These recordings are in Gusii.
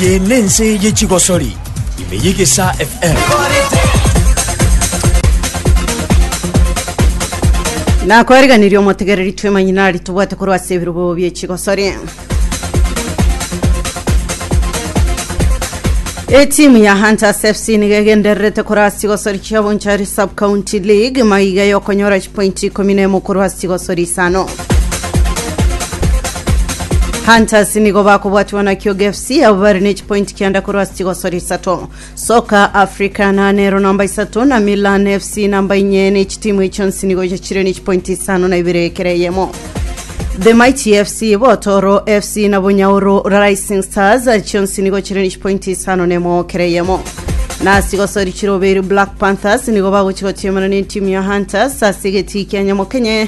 Eye nense ye chigosori ime ye gesa FM. nakwariganirie omotegereri twemanyi nari tobwate korwa ase ebirobo bie chigosori etimu ya hunters fc nigo egendererete korwa ase chigosori chia bonchari sub county league maiga yokonyora chipointi ikomi na emo korwa ase chigosori isano Hunters nigo bakobwatiwa na Kyoga FC abo bari ne chipointi kianda korwa ase chigosori isato Soka Africa nanero namba isato na Milan FC namba inye ne chitimu echi chionsi nigo chiachire ne chipointi isano na ibere ekere eyemo The Mighty FC Botoro FC na Bunyauru Rising Stars chionsi nigo chire ne chipointi isano na emo kere eyemo na sigosori chiroberi Black Panthers nigo bagochigotiemana ne timu ya Hunters ase egetii kia Nyamokenye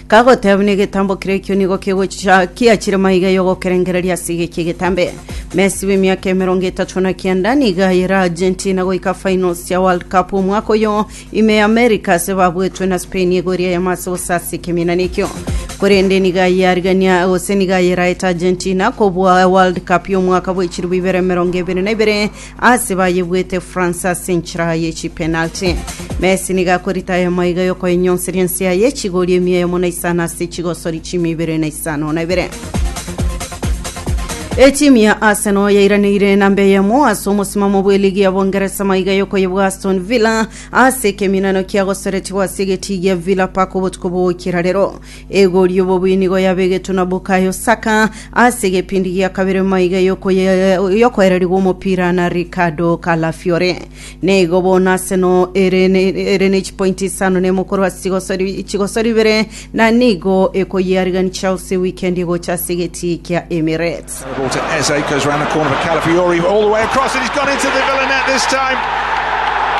Kagoteeba buna egetambo keria ekio nigo kegocha kiachire maiga y'ogokerengereria ase iga ekia egetambe. Messi bw'emiaka emerongo etato na kianda nigo ayere Argentina goika finals chia World Cup omwaka oyo ime y'America ase babuetwe na Spain igoro eria yamo ase gosasa ekeminana ekio. Korende nigo aye arigania gose nigo ayeraete Argentina kobua World Cup y'omwaka bwa echilifu ibere emerongo ebere na ibere Ase bayebuete France ase enchera ye chipenalty. Messi nigo akorita aye maiga y'okoenyonseria ense yaye echigori emia eyemo na isano ase echigosori chimia ibere na isano na ibere. Etimu ya Arsenal yairaneire namba eyemo ase omosimamo bw'eligi ya Bongeresa maiga y'okoyebwa Aston Villa ase ekeminano kiagosoretigwa ase egetii gia Villa Park obotuko bw'ogoikera rero. Egori y'obobuinigo yabegetwe na Bukayo Saka ase egepindi gia kabere nyuma iga y'okoye- y'okoererigwa omopira na Ricardo Calafiore. Naigo bono Arsenal ere ne- ere ne chipointi isano na emo korwa ase chigosori- chigosori ibere na nigo ekoyiarigani Chelsea wikendi egocha ase egetii kia Emirates. The ball to Eze, goes around the corner for Calafiori, all the way across, and he's gone into the Villa net this time.